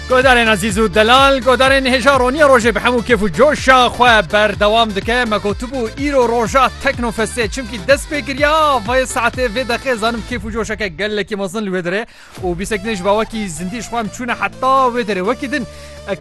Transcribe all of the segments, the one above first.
Guhdarên Azîz û Delal guhdarên hêja roniya rojê bi hemû kêf û coşa xwe berdewam dike me gotibû îro roja teknofestê çimkî dest pê kiriya vê saetê vê deqê zanim kêf û coşeke gelekî mezin li wê dirê û bîsek din ji bawekî zindî ji xwe em çûne heta wê derê wekî din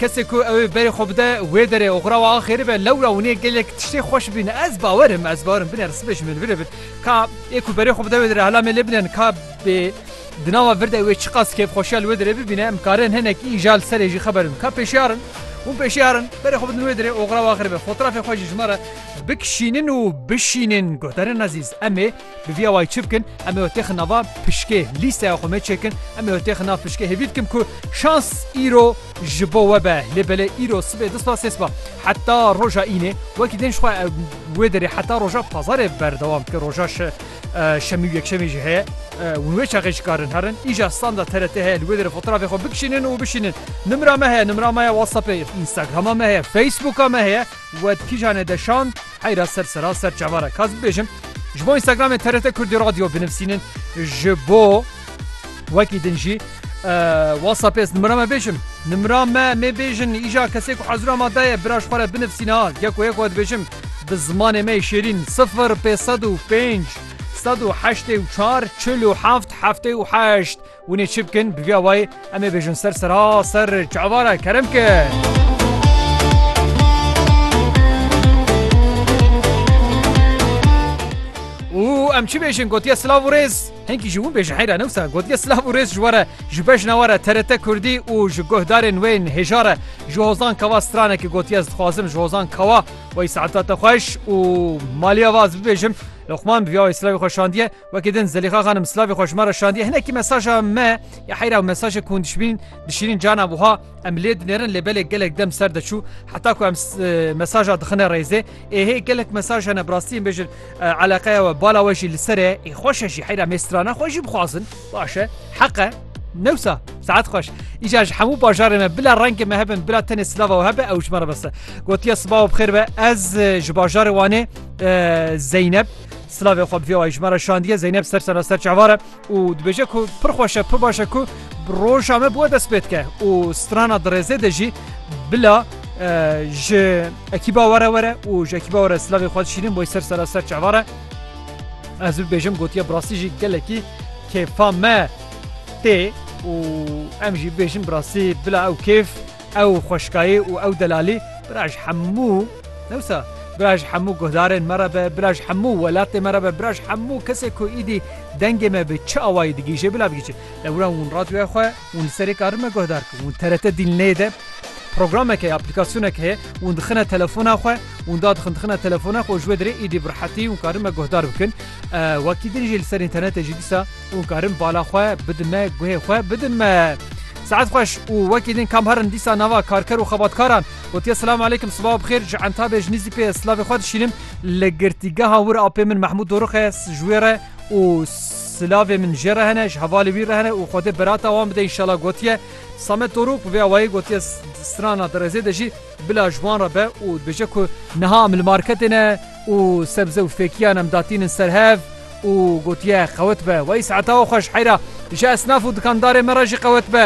kesê ku ew ê berê xwe bide wê derê û xurawa axêrî be lewra û nê gelek tiştê xweş bîne ez bawerim ez bawerim binêr sibê ji min bile bin ka ê ku berê xwe bide wê dirê hela me lê binen ka bê Di nava virdê wê çiqas kêfxweşiya li wê derê bibîne em dikarên hinek îja li serê jî xeber bidin. Ka pêşiyar in? Hûn pêşiyar in berê xwe bidin wê derê oxira wan xiribe. Fotrafê xwe jî ji me re bikişînin û bişînin. Guhdarên ezîz em ê bi vîya wayî çi bikin? Em ê we têxin nava pişkê lîsteya xwe me çêkin. Em ê we têxin nav pişkê hêvî dikim ku şans îro ji bo we be. Lê belê îro sibê du spa sê spa heta roja înê wekî din ji xwe wê derê heta roja pazarê berdewam dike. Roja Şemî û yekşemî jî heye. Hûn wê çaxê jikarin herin. Îja standa TRT heye li wê derê fotrafê xwe bikişînin û bişînin. Nimra me heye, nimra me ya whatsappê, instagrama me heye, facebooka me heye. We di kîjan e de şand? Heyra ser sera ser çavar e. Ka ez bibêjim ji bo instagramê TRT Kurdî Radio binivîsînin ji bo wekî din jî whatsappê ez nimra me bêjim. Nimra me mê bêjin îja kesê ku hezira me daye biraj xwe re binivîsîne ha. Yek û yek we dibêjim. Bi zimanê me yê şêrîn, sifir pê sed û pênc, sed û heştê û çar, çil û heft, heftê û heşt. Hûn ê çi bikin? Bi vî awayî em ê bêjin ser ser a ser çavara kerem ke. Û em çi bêjin gotiye silav û rêz. Hinkî ji wî bê ji heyra ne wisa gotiye silav û rêz ji we re ji bejna we re TRT Kurdî û ji guhdarên wê yên hêja re ji Hozan Kawa stranekê gotiye ez dixwazim ji Hozan Kawa wey saeta te xweş û maliya we ez bibêjim Luqman bi vîya wê silavê xwe şandiye wekî din Zelîxa xanim silavê xwe ji me re şandiye hinekî mesaja me ya heyra û mesajê ku hûn dişbînin dişînin cana wiha em lê dinêrin lê belê gelek dem ser deçû heta ku em mesaja dixine rêzê Ê hê gelek mesaj hene bi rastî em bêjin eleqeya we bala we jî li ser e ê xweş e jî heyra mê strana xwe jî bixwazin baş e heq e newsa saet xweş îca ji hemû bajarê me bila rengê me hebin bila tenê silava we hebe ew ji me re bese gotiya sibawa bi xêr be ez ji bajarê wanê zeyneb Slavê xwe bi vê wayî ji me re şandiye zeyneb ser sena ser çavare û dibêje ku pir xweş e, pir baş e ku roja me bi we dest pê dike û strana dirêzê de jî bila ji ekîba we re were û ji ekîba we re silavê xwe dişînin boy ser sera ser çavan re. Ez bibêjim gotiye bi rastî jî gelekî kêfa me tê û em jî bêjin bi rastî bila ew kêf Ew xweşkayî û ew delalî bira ji hemû ne wisa bira ji hemû guhdarên me re be, bira ji hemû welatê me re be, bira ji hemû kesê ku îdî dengê me bi çi awayî digihîje bila bigihîje. Lê wina hûn radyoya xwe hûn li serê karin me guhdar bikin. Hûn TRT dîl nê de programek heye, aplîkasyonek heye hûn dixine telefona xwe hûn da dixin dixine telefona xwe û ji wê dirê îdî bi rehetî hûn karin me guhdar bikin. Wekî din jî li ser înternetê jî dîsa û karin bala xwe bidin me guhê xwe bidin me. Saet xweş û wekî din kam herin dîsa nava karker û xebatkaran gotiye silam aleykim sibawa bixêr ji entabê ji nîzî pê silavê xwe dişînim li girtîgeha wir apê min Mehmûd Dorux e ji wê re û silavê min jê re hene ji hevalê wî re hene û xwedê berata wan bide înşala gotiye Samet Doruk bi vê awayî gotiye strana di rêzê de jî Bila ji wan re be û dibêje ku niha em li marketê ne û sebze û fêkiyan em datînin ser hev û gotiye qewet be. Weyîs heta we xwe ji heyra ji esnaf û dikandarên me re jî qewet be.